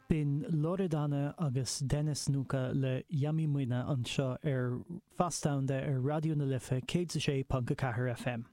B'in Loredana agus Denis Nuka le Yummy Muina anseo ar Feasta Domhanda ar Raidió na Life 106.4 FM.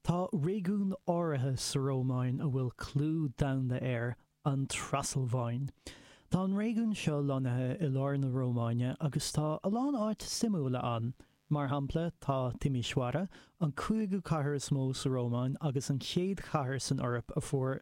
Tá réigiún áirithe sa Rómáin a bhfuil clú domhanda air, an Trasalváin. Tá an réigiún seo lonnaithe i lár na Rómáine agus tá a lán áit suimiúla ann. Mar shampla, tá Timisoara, an cúigiú cathair is mó sa Rómáin agus an chéad chathair san Eoraip a fuair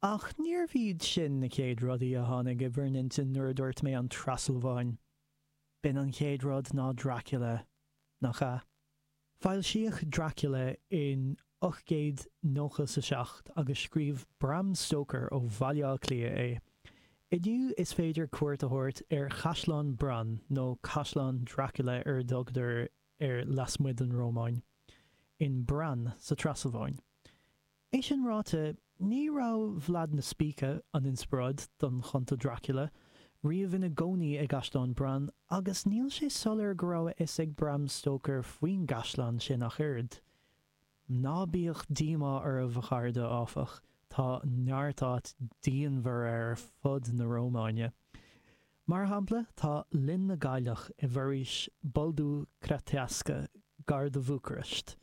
Ach níorbh iad sin na chéad rudaí a tháinig i bhur n-intinn nuair a dúirt mé an Trasalváin. B'in an chéad rud ná Dracula, nach ea? Foilsíodh Dracula in 1897 agus scríobh Bram Stoker ó Bhaile Átha Cliath é. Inniu is féidir cuairt a thabhairt ar Chaisleán Bran, nó Caisleán Dracula ar a dtugtar air lasmuigh den Rómáin, in Bran sa Trasalváin. É sin ráite, ní raibh Vlad na Spíce, an inspioráid don chunta Dracula, riamh ina gcónaí i gcaisleán Bran, agus níl sé soiléir go raibh a fhios ag Bram Stoker faoin gcaisleán sin ach oiread. Ná bíodh díomá oraibh, a chairde, áfach, tá neart áit diamhair ar fud na Rómáine. Mar shampla, tá Linn na gCailleach i bhforaois Buldu Crăicească, gar do Bhucharest.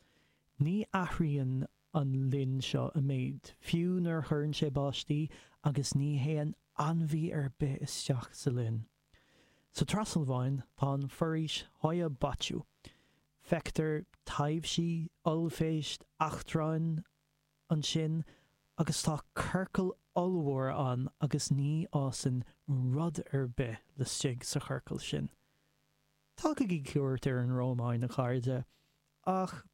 Ní athraíonn an linn seo i méid, fiú nuair chuireann sé báistí agus ní théann ainmhí ar bith isteach sa linn. Sa Trasalváin tá an foraois Hoia Baciu. Feictear taibhsí, ollphéist, eachtráin ansin agus tá ciorcal ollmhór ann agus ní fhásann rud ar bith laistigh sa chiorcal sin. Tugaigí cuairt ar an Rómáin, a chairde, ach